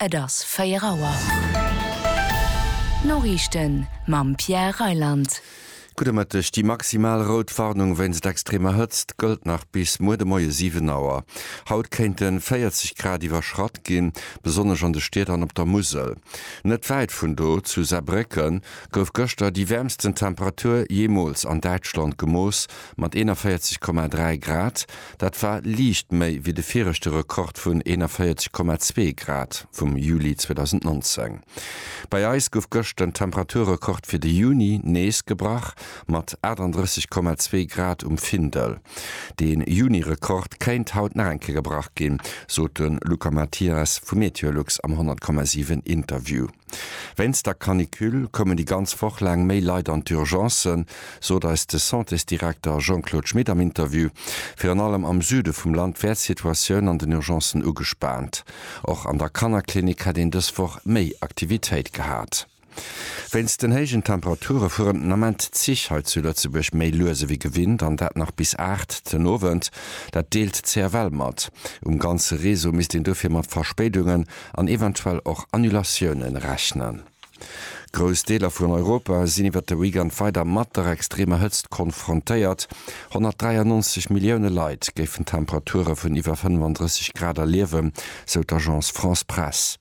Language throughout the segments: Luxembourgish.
Et ass 4 Auer. D'Noriichten mam Pierre Reyland. Gudde Mëtteg. Déi maximal rout Warnung wéinst extremer Hëtzt gëllt nach bis muer de Moie 7 Auer. Haut kéinte 40 Grad iwwerschratt ginn, besonnesch an de Stied an op der Musel. Net wäit vun do, zu Saarbrécken, gouf gëschter déi wäermsten Temperatur jeemools an Däitschland gemooss, mat 41,3 Grad. Dat war liicht méi wéi de viregte Rekord vun 41,2 Grad vum Juli 2019. Bei eis gouf gëscht den Temperaturrekord fir de Juni nees gebrach, mat 38,2 Grad um Findel. De Juni-Rekord kéint haut nach eng Kéier gebrach ginn, sot de Luca Mathias vu Meteolux am 100,7 Interview. Wéinst der Canicule koumen déi ganz Woch laang méi Leit an d'Urgencen, sot eis de Santésdirekter Jean-Claude Schmit am Interview. Virun allem am Süde vum Land wär d'Situatioun an den Urgencen ugespaant. Och an der Kannerklinik hätt een dës Woch méi Aktivitéit gehat. Wéinst den héijen Temperature fueren den Ament d'Zich hei zu Lëtzebuerg méi lues ewéi gewinnt an dat nach bis 8 den Owend. Dat deelt d'CFL mat. Um ganze Réseau misst een dofir mat Verspéidungen an eventuell och Annulatiounen rechnen. Grouss Deeler vun Europa sinn iwwert de Weekend weider mat der extremer Hëtzt konfrontéiert. 193 Millioune Leit géifen Temperature vun iwwer 35 Grad erliewen, sou d'Agence France-Presse.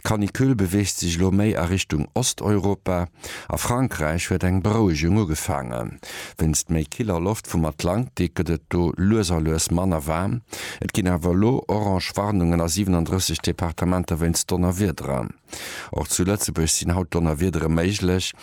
D'Canicule beweegt sech elo méi a Richtung Osteuropa. A Frankräich huet eng Berouegung ugefaangen. Wéinst méi killer Loft vum Atlantik gëtt et do lues a lues manner waarm. Et ginn awer elo orange Warnungen a 37 Departementer wéinst Donnerwiederen. Och zu Lëtzebuerg sinn haut Donnerwiedere méiglech.